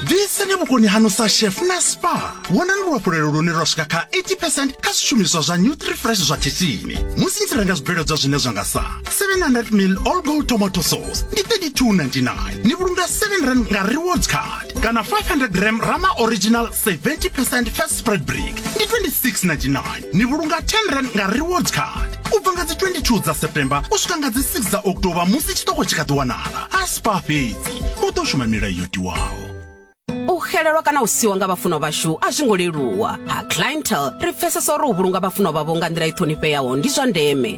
ḓiiseni vhukoni hanu sa chef na spa vhonani luhafhulelo lune lwa swika kha 80 percent kha zwishumiswa zwa new three fresh zwa khethini musi ni tshi renga zwibveledzwa zwine zwa nga sa 700 mil all gold tomato sauce ndi 32.99 ni vhulunga 7 rand nga rewards card kana 500 gram rama original 70 percent fast spread break ndi 2699 ni vhulunga 10 rand nga rewards card u bva nga dzi 22 dza september u swika nga dzi 6 dza october musi tshiṱoko tshi kha ḓi wanala a spa fhedzi u ḓo shuma milayo yo tiwaho u xelelwa kana u siwa nga vhafunwa vhashu a zwi ngo leluwa ha clientel ri pfesesa uri u vhulunga vhafunwa vhavho nga nḓila i ṱhonifheaho ndi zwa ndeme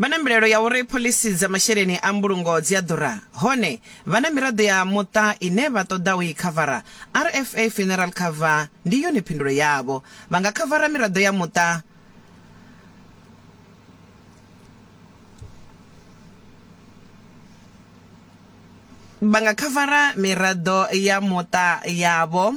Vha na mbilaelo ya uri phoḽisi dza masheleni a mbulungo dzi a ḓura. Hone, vha na miraḓo ya muṱa ine vha ṱoḓa u i khavara. RFA Funeral Cover ndi yone phindulo yavho. Vha nga khavara miraḓo ya muṱa vha nga khavara miraḓo ya muṱa yavho.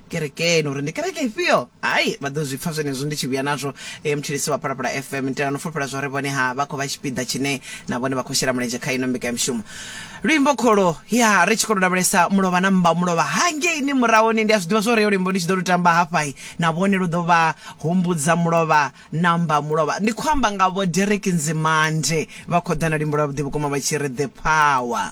kerekeni uri ndi kereke ifhio hai vha ḓo zwi pfa zwenezwo ndi tshi vhuya nazwo e mutshilisi wa phalaphala fm nitelano fulufhela zwa uri vhone ha vha khou vha tshipiḓa tshine na vhone vha khou shela mulenzhe kha ino mbekanyamushumo luimbo kholo ya ri tshi khou lavhelesa mulovha na mmba mulovha hangeini murahoni ndi a zwi ḓivha zwa uri yo luimbo ndi tshi ḓo lu tamba hafhai na vhone lu ḓo vha humbudza mulovha na mmba mulovha ndi khou amba nga vho derek nzimande vha khou ḓa na luimbo lwa vhuḓi vhukuma vha tshi ri the power